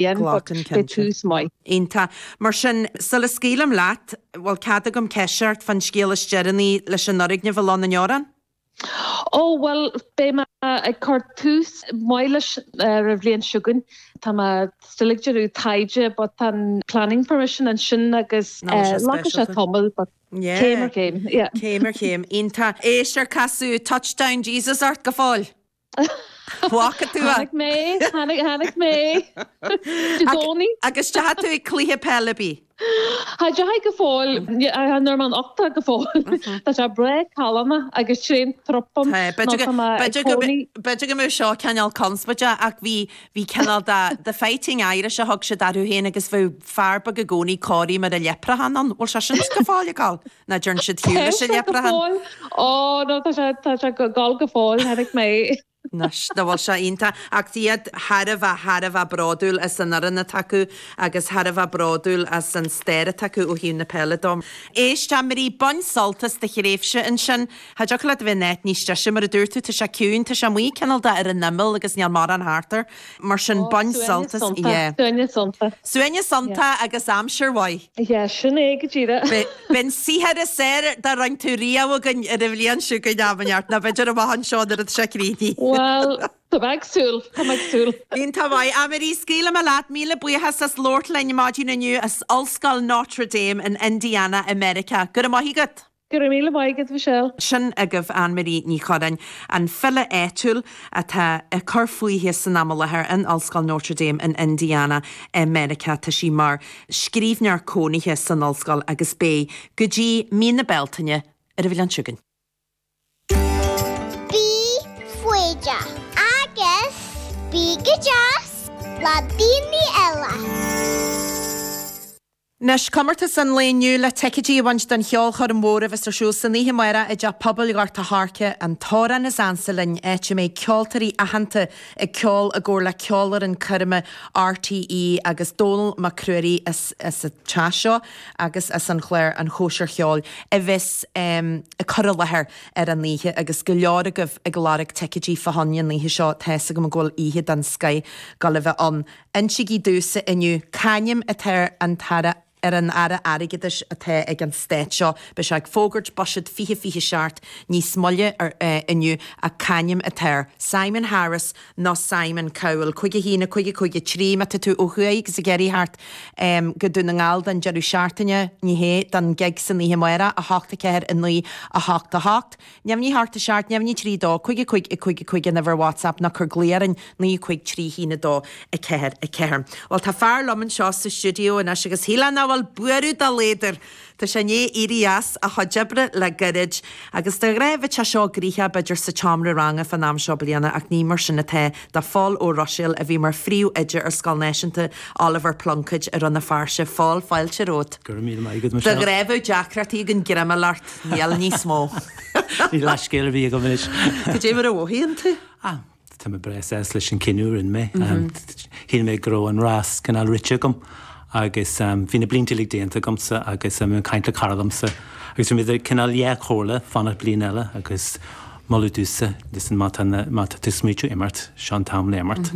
Glac an ceann sin. Iontach. Mar sin, sula scaoilim leat, bhfuil cead agam ceist a chur ort fán scéal is deireanaí leis an fhoirgneamh i Loch na nDeorán? Ó, bhuel, beidh mé ag cur tús maith leis ar an bhliain seo chugainn. Tá mé still ag déanamh taighde but an planning permission ansin agus glacfaidh sé tamall but céim ar chéim. Céim ar chéim. Iontach. Éist, ar casadh Touchdown Jesus ort go fóill? Bhfaca tú é. Chonaic mé, chonaic, chonaic mé. I gcónaí. Agus deachaigh tú ag cluiche peile ar bith? Cha deachaigh go fóill. An Norman Octa go fóill. Tá sé breá calma agus sén trup dom. B'fhéidir go bhfuil seo cineál conspóide ach bhí Bhí cineál de The Fighting Irish a thug siad orthu féin agus bheadh fear beag i gcónaí, cóirithe mar leipreachán ann. Bhfuil sé sin go fóill ag gabháil? Nó an dearn siad ar shiúl leis an leipreachán? Ó, no, tá sé, tá sé ag gabháil go fóill, chonaic mé. Anois, dá bhfuil sé iontach. Ach bhí siad thar a bheith, thar a bheith bródúil as an fhoireann atá acu agus thar a bheith bródúil as an stair atá acu ó thaobh na peile de. Éist, Annemarie, bain sult as do thréimhse ansin. Cha dtiocfadh leat a bheith in áit níos deise, mar a dúirt tú, tá sé ciúin, tá sé amuigh cineál de ar an imeall agus níl mórán thart air. Mar sin, Oh, bain suaimhneas sult as, sonnta, yeah. suaimhneas sonnta. Suaimhneas sonnta Yeah. agus aimsir mhaith. Yeah, sin é go díreach. Beidh an saothar is fearr dá rinn tú riamh againn ar an bhliain seo chugainn am inteacht, nó b'fhéidir amach anseo nuair atá sé críochnaithe. Bhuel, tá mé ag súil, tá mé ag súil. Iontach maith. Annemarie, scaoilfidh mé leat, míle buíochas as labhairt linn maidin inniu as Ollscoil Notre Dame in Indiana i Meiriceá. Go raibh maith agat. Go raibh míle maith agat, Michelle. Sin agaibh Annemarie Ní Churreáin, an file áitiúil atá ag cur fúithi san am i láthair in Ollscoil Notre Dame in Indiana i Meiriceá. Tá sí mar scríbhneoir cónaithe san ollscoil agus beidh go dtí mí na Bealtaine ar an bhliain seo chugainn. Bí foighdeach agus bí go deas le daoine eile. Anois, comórtas an lae inniu le ticeidí a bhaint don cheolchoirm mhór a bheas ar siúl san oíche amáireach i dTeach Pobail Ghort a' Choirce, An tAmhrán is Ansa Linn, áit a mbeidh ceoltóirí aitheanta ag ceol i gcomhar le Ceolfhoireann Coirme RTÉ agus Dónall Mac Ruairí as an teach seo agus as an chlár An Chóisir Cheoil a bheas ag cur i láthair ar an oíche agus go leor agaibh ag lorg ticeidí fá choinne an oíche seo, tá's agam go bhfuil oíche den scoith le bheith ann. Insigí domhsa inniu c'ainm atá ar an Aire ar an Aire Airgeadais atá ag an Stát seo. Beidh sé ag fógairt buiséad fiche fiche seacht níos moille ar inniu ach c'ainm atá air? Simon Harris nó Simon Cowell? Cúig a haon, cúig a cúig a trí, má tá tú ó thuaidh agus ag iarraidh teacht go Dún na nGall don deireadh seachtaine, ní hé, don gig san oíche amáireach, 8, 4, 9, 8, 8. Neamhní hocht a seacht neamhní trí dó cúig a cúig a cúig a cúig An uimhir WhatsApp nó cuir glao orainn naoi a cúig trí haon a dó a ceathair a ceathair Bhuel tá fear liom anseo sa stiúideo anois agus shílfinn nach bhfuil buaireamh dá laghad air Tá sé i ndiaidh éirí as a chuid oibre le gairid agus de ghnáth bheadh sé seo gnoitheach b'fhéidir sa tseomra ranga fán am seo bliana ach ní mar sin atá do Phól Ó Ruiséil a bhí mar phríomhoide ar Scoil Náisiúnta Oliver Plunkett i Rann na Feirste a Phóil fáilte romhat Go raibh míle maith agat Michelle. Bhfuil deacrachtaí againn greim a fháil ort? Níl, níos mó. Níl leithscéal ar bith agam anois. Cad é mar a mhothaíonn tú? Ah, tá mé breá sásta leis an cinneadh a rinne mé. Shíl mé go raibh an rás cineál rite agam agus bhí na blianta uilig déanta agamsa agus bhí mé ag caint le cara liomsa agus bhí mé idir cineál dhá chomhairle fanacht bliain eile agus moladh domhsa, listen, má tá na, má tá tú ag smaoitiú imeacht, seo an t-am le imeacht.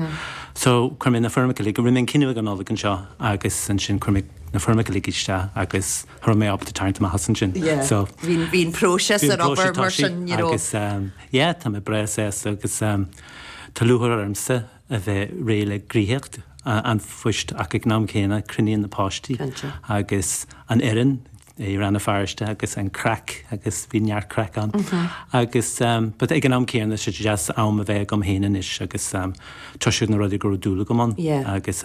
So, chuir mé na foirmeacha uilig, rinne mé an cinneadh ag an Nollaig anseo agus ansin chuir mé na foirmeacha uilig isteach agus, Cha raibh mé ábalta tarraingt amach as ansin. Bhí an próiseas ag obair mar sin, you know. Tá mé breá sásta agus tá lúcháir ormsa a bheith réidh le gnoitheacht an phoist ach ag an am céanna cronaím na páistí agus an fhoireann i Rann na Feirste agus an craic agus bhí neart craic ann agus but ag an am céanna is deas am a bheith agam féin anois agus tá's agat na rudaí go raibh dúil agam ann agus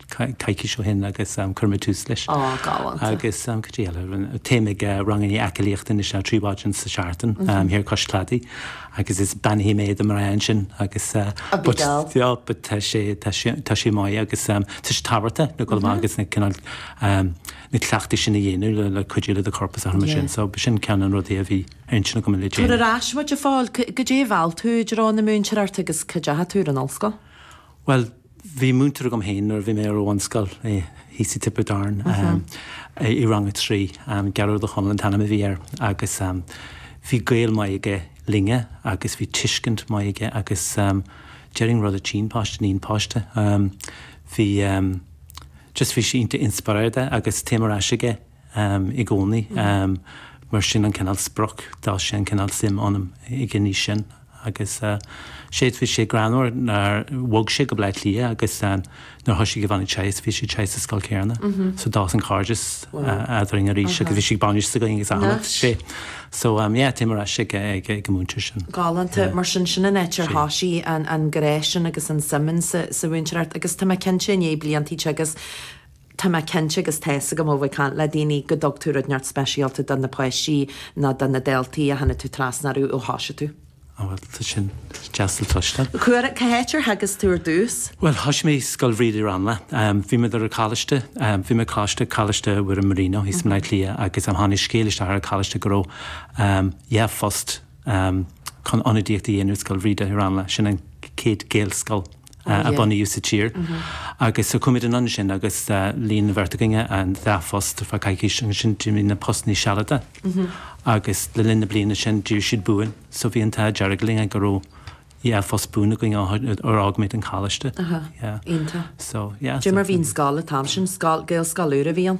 coicís ó shin agus chuir mé tús leis. Ó, galánta. Agus cad é eile, téim ag rangannaí aclaíochta anois ná trí mhaidin sa tseachtain thiar cois cladaigh agus is beannaithe mé do mo mharú ansin agus... Ag dul. Bhuel, but tá sé, tá sé, tá sé maith agus tá sé tábhachtach le dhul amach agus na cineál, na cleachtaí sin a dhéanamh le cuidiú le do chorp agus a tharm ansin so b'shin ceann de na rudaí a bhí ar intinn agam le déanamh. Tabhair ar ais muid, a Phóil, cad é a mheall tú i dtreo na múinteoireachta agus cá ndeachaigh tú ar an ollscoil? Bhuel, Bhí múinteoir agam féin nuair a bhí mé ar bhunscoil, thíos i Tiobraid Árann, i rang a trí. Gearóid Ó Conaill an t-ainm a bhí air agus bhí gaol maith aige linne agus bhí tuiscint mhaith aige agus déarfainn rud a tchíonn páiste níonn páiste. Bhí, just bhí sé iontach inspioráideach agus téim ar ais aige. i gcónaí. Mar sin an cineál sprioc, d'fhás sé an cineál suim ionam i gcónaí as sin. Agus bhí sé greannmhar mar bhog sé go Bleá Cliath agus nuair thoisigh mo bhean ag teagasc, bhí siad ag teagasc sa scoil céanna. So d'fhás an cairdeas eadrainn arís agus bhí sé ag bainis s'againn agus anall sé. So yeah, téim ar ais ag an múinteoir sin. Galánta. Mar sin, sin an áit ar thoisigh an grá sin agus an suim in sa mhúinteoireacht agus tá mé cinnte i ndiaidh bliantaí agus. Tá mé cinnte agus tá's agam ó bheith ag caint le daoine go dtug tú rud inteacht speisialta do na páistí nó do na daltaí a tháinig tú trasna orthu ó thosaigh tú. Á bhuel, tá sin deas le cloisteáil. Cár, cá háit ar theagasc tú ar dtús? Bhuel, thoisigh mé i Scoil Bhríde i Ranelagh. Bhí muid ar an Choláiste, bhí mé ag Coláiste, Coláiste Mhuire Marino thíos i mBleá Cliath agus tháinig scéal isteach ar an Choláiste go raibh, dhá phost chun ionadaíocht a dhéanamh i Scoil Bhríde i Ranelagh, sin an chéad Ghaelscoil. a bunaíodh sa tír agus chuaigh muid anonn ansin agus líon an bheirt againn an dá phost ar feadh coicís agus ansin d'éirigh na postannaí sealadach agus le linn na bliana sin d'éirigh siad buan so bhí an t-ádh dearg linn go raibh dhá phost buan againn ar fhág muid an coláiste. Iontach. Mar bhí an scoil atá ansin, Gaelscoil úr a bhí ann?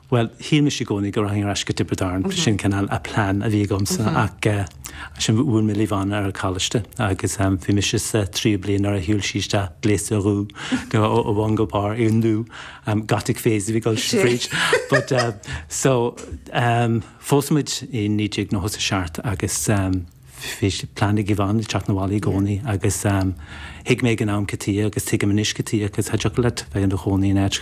Bhuel, shíl mise i gcónaí go rachainn ar ais go Tiobraid Árann, sin cineál an plean a bhí agamsa ach ansin bhuail mé le Yvonne ar an choláiste agus bhí mise sa tríú bliain nuair a shiúil sí isteach, gléasta go ó bhun go barr i ndubh, gothic phase a bhí ag dul fríd but, so, phós muid i 1997 agus. Bhí plean ag Yvonne teacht na bhaile i gcónaí agus thuig mé ag an am cad tuige agus tuigim anois cad tuige cos tá deacair leat bheith in do chónaí in áit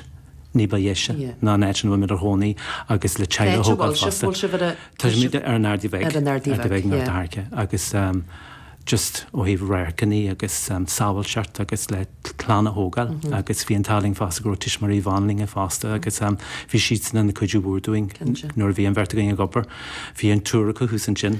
ní ba dheise ná an áit ina bhfuil muid inár gcónaí agus le teaghlaigh a thógáil fosta. Bhfuil sibh, bhfuil sibh ar an, tá muid ar an Ardaidh Bheag, ar an Ardaidh Bheag, Ardaidh Bheag North America agus just ó thaobh radharcannaí agus sábháilteacht agus le clann a thógáil agus bhí an t-ádh linn fosta go raibh tuismitheoirí Yvonne linn fosta agus bhí siadsan ina cuidiú mhór dúinn nuair a bhí an bheirt againn ag obair. Bhí an triúr acu thuas ansin.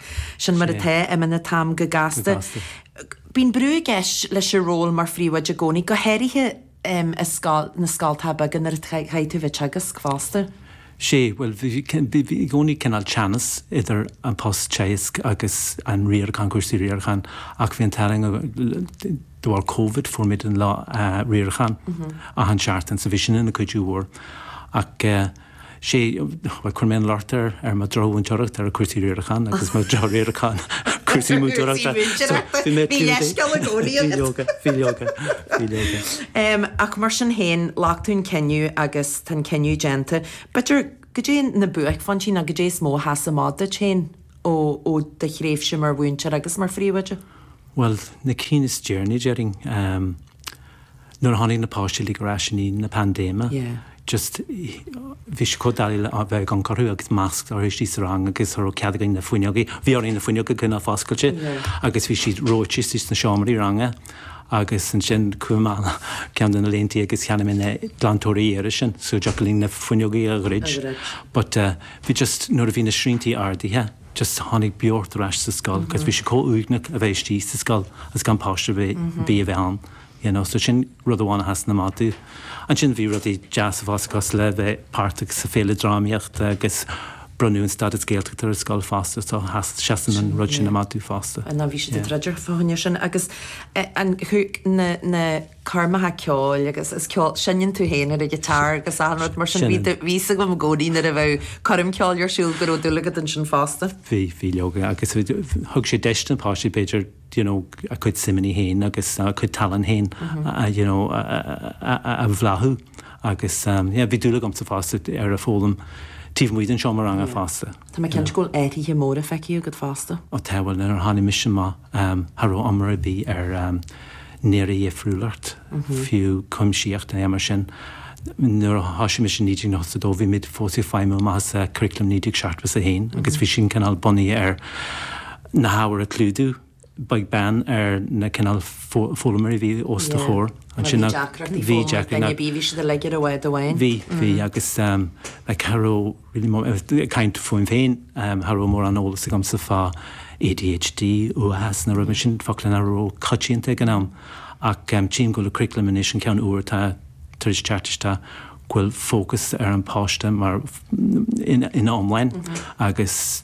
Sin mar atá, imíonn an t-am go gasta. Bíonn brú i gceist leis an ról mar phríomhoide i gcónaí, go háirithe i scoil, na scoltacha beaga nuair a chaithfidh tú bheith teagasc fosta. Sé, bhuel, bhí i gcónaí cineál teannas idir an post teagasc agus an riarachán, cúrsaí riaracháin ach bhí an t-ádh linn, de bharr Covid fuair muid an lá riaracháin achan seachtain so bhí sin ina cuidiú mhór ach, sé, bhuel, chuir mé an locht ar ar mo dhrochmhúinteoireacht ar an cúrsaí riaracháin agus mo dhrochriarachán ar cúrsaí múinteoireachta. Cúrsaí múinteoireachta. Bhí mé clúdaithe. Bhí leithscéal i gcónaí agat. Bhí leoga, bhí leoga, bhí leoga. Em, ach mar sin féin, ghlac tú an cinneadh agus tá an cinneadh déanta. B'fhéidir cad é na buaicphointí nó cad é is mó a sheas amach duit féin ó ó do thréimhse mar mhúinteoir agus mar phríomhoide? Bhuel, na cinn is deireanaí, déarfainn, em, nuair a tháinig na páistí uilig ar ais i ndiaidh na pandéime, just, bhí sé chomh doiligh le bheith ag amharc orthu agus masks orthu istigh sa rang agus cha raibh cead againn na fuinneoga, bhí orainn na fuinneoga a choinneáil foscailte agus bhí siad reoite istigh sna seomraí ranga agus ansin chuaigh mé ann ceann de na laethanta agus cheannaigh mé na glantóirí aeir sin so dtiocfadh linn na fuinneoga a dhruid but bhí just, nuair a bhí na sriantaí ardaithe. just tháinig beocht ar ais sa scoil cos bhí sé comh uaigneach a bheith istigh sa scoil agus gan páiste ar bith a bheith ann you know so sin rud amháin a sheasann amach domh ansin bhí rudaí deasa fosta cos le bheith páirteach sa Féile Drámaíochta agus bronnadh an stádas Gaeltachta ar an scoil fosta so sheas seasann an rud sin amach domh fosta. Bhuel ná bhí siad ag yeah. druidim fá choinne sin agus eh, an chuig na na coirmeacha ceoil agus is ceol, seinneann tú féin ar an ghiotár agus achan rud mar sin, bhí, bhí fhios agam i gcónaí nuair a bheadh coirm ceoil ar siúl go raibh dúil agat ansin fosta. Bhí, bhí leoga agus thug sé deis do na páistí b'fhéidir you know a gcuid suimeannaí féin agus a gcuid tallann féin a you know a bhláthú agus yeah bhí dúil agamsa fosta ar an fhoghlaim taobh amuigh den seomra ranga fosta. Tá mé cinnte go bhfuil athruithe móra feicthe agat fosta. Ó tá, bhuel, nuair a tháinig mise amach, cha raibh iomrá ar bith ar néara-dhifriúlacht, fiú cuimsíocht é mar sin. Nuair a thoisigh mise i 1982 bhí muid fós ag feidhmiú amach as curriculum 1971 agus bhí sin cineál bunaithe ar na hábhair a chlúdú. beag beann ar na cineál foghlaimeoirí a bhí os do chomhair. Má bhí deacrachtaí foghlama ag daoine ar bith, bhí siad uilig ar bhád amháin. Bhí, bhí agus cha raibh really mór, ag caint fúm féin, cha raibh mórán eolas agamsa fá ADHD, uathachas na rudaí sin, focla nach raibh ró-choitianta ag an am. Ach tchím go bhfuil an curriculum anois, an ceann úr atá tar éis teacht isteach, go bhfuil fócas ar an pháiste mar, ina iomláine agus,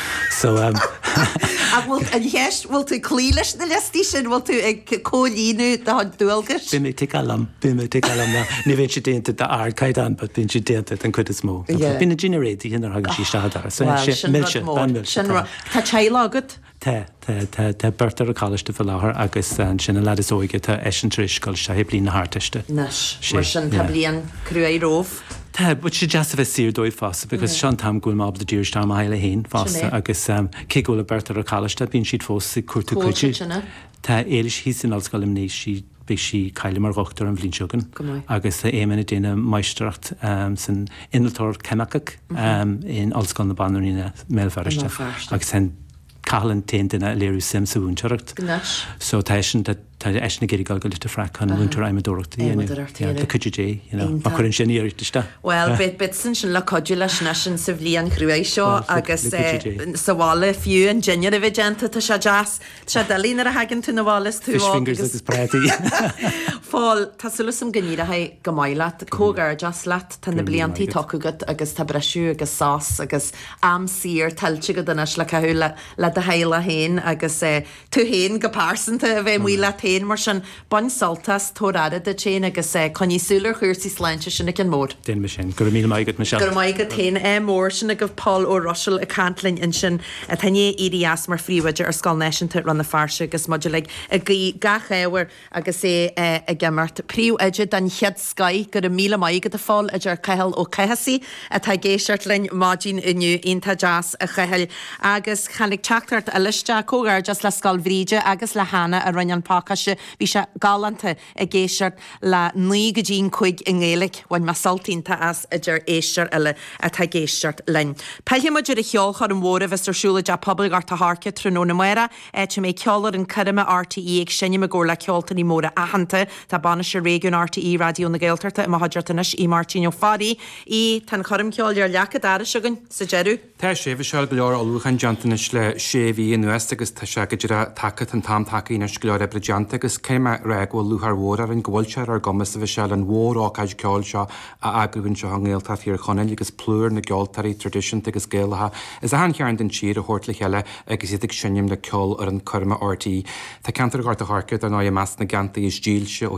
So um Ach bhfuil an cheist, bhfuil tú ag cloí leis na liostaí sin, bhfuil tú ag comhlíonadh do dhualgais? Bím ag ticeáil liom, bím ag ticeáil liom now. Ní bhíonn sé déanta d'ardchaighdeán but bíonn sé déanta den chuid is mó. Yeah. Bíonn an dinnéar déanta nuair a thagann siad isteach an doras. So Well, sin rud mór. Sin rud. Tá teaghlach agat? Tá. Tá beirt ar an choláiste faoi láthair agus ansin an lad is óige tá eisean ar scoil, seo é bliain na hArdteiste. Anois, mar sin, tá bliain cruaidh roimhe. Tá, bhuel sé deas a bheith saor dóibh fosta because seo an t-am go bhfuil mé ábalta díriú isteach ar mo theaghlach féin fosta agus cé go bhfuil an bheirt ar an choláiste bíonn siad fós ag cuartú cuidiú. Tá Éilis thíos in Ollscoil Luimní, sí, beidh sí cáilithe mar dhochtúir an bhliain seo againn agus tá Éamonn ag déanamh máistreacht san innealtóireacht cheimiceach in Ollscoil na Banríona i mBéal Feirste agus tá an Cathal an t-aon duine a léirigh suim sa mhúinteoireacht. Anois. So tá eisean, tá, tá eisean ag iarraidh dul go Leitir Fraic chun múinteoir adhmadóireachta a dhéanamh. Adhmadóireacht a dhéanamh. Le cuidiú Dé, you know. Iontach. Má chuireann sé an iarracht isteach. Bhuel, beidh, beidh tú ansin le cuidiú leisean sa bhliain chruaidh seo agus. Bhuel, le cuidiú Dé. Eh, sa bhaile fiú an dinnéar a bheith déanta, tá sé deas. Tá sé doiligh nuair a thagann tú na bhaile is tú óg. Fish fingers agus prátaí. Bhuel, tá súil agam go n-éireoidh go maith leat, comhghairdeas leat, tá na bliantaí tugtha agat agus tá briseadh agus sos agus am saor tuillte agat anois le caitheamh le do theaghlach féin agus tú féin go pearsanta a bheith amuigh leat féin. Mar sin, bain sult as, tabhair aire duit féin agus coinnigh súil ar chúrsaí sláinte, sin ar an mbóthar. Déanfaidh mé sin. Go raibh míle maith agat, Michelle. Go raibh maith agat féin, ádh mór. Sin agaibh Pól Ó Ruisil ag caint linn ansin, atá i ndiaidh éirí as mar phríomhoide ar Scoil Náisiúnta Rann na Feirste agus muid uilig ag guí gach ádh air Agus é ag imirt, príomhoide den chéad scoith, Go raibh míle maith agat, a Phóil, a deir Cathal Ó Cathasaigh, atá ag éisteacht linn maidin inniu. Iontach deas, a Chathail. Agus tháinig teachtaireacht eile isteach, comhghairdeas le Scoil Bhríde agus le hAnna a rinne an pacáiste. Bhí sé galánta ag éisteacht le naoi go dtí an cúig i nGaeilic. Bhain mé sult iontach as, a deir éisteoir eile atá ag éisteacht linn. Pillfimid ar an cheolchoirm mhór a bheas ar siúl i dTeach Pobail Ghort a' Choirce tráthnóna amárach. Áit a mbeidh Ceolfhoireann Coirme RTÉ ag seinm i gcomhar le ceoltóirí móra aitheanta tá Bainisteoir Réigiún RTÉ Raidió na Gaeltachta i mo chuideachta anois, Aodh Máirtín Ó Fearraigh, a Aoidh, tá an choirm cheoil ar leac an dorais againn sa deireadh. Tá, a Shéamuis, go leor ullmhúcháin déanta anois le sé mhí anuas agus tá sé go díreach tagtha Tá an t-am tagtha anois go leor oibre déanta agus caithfidh mé a rá go bhfuil lúcháir mhór orainn go bhfuil sé ar ár gcumas a bheith ábalta an mhór-ócáid ceoil seo a eagrú anseo i nGaeltacht Thír Chonaill agus plúr na gceoltóirí traidisiúnta agus Gaelacha as achan chearn den tír a thabhairt le chéile agus iad ag seinm le ceolfhoireann coirme RTÉ. Tá ceantar Ghort an Choirce, dar ndóigh, i measc na gceantar is dílse ó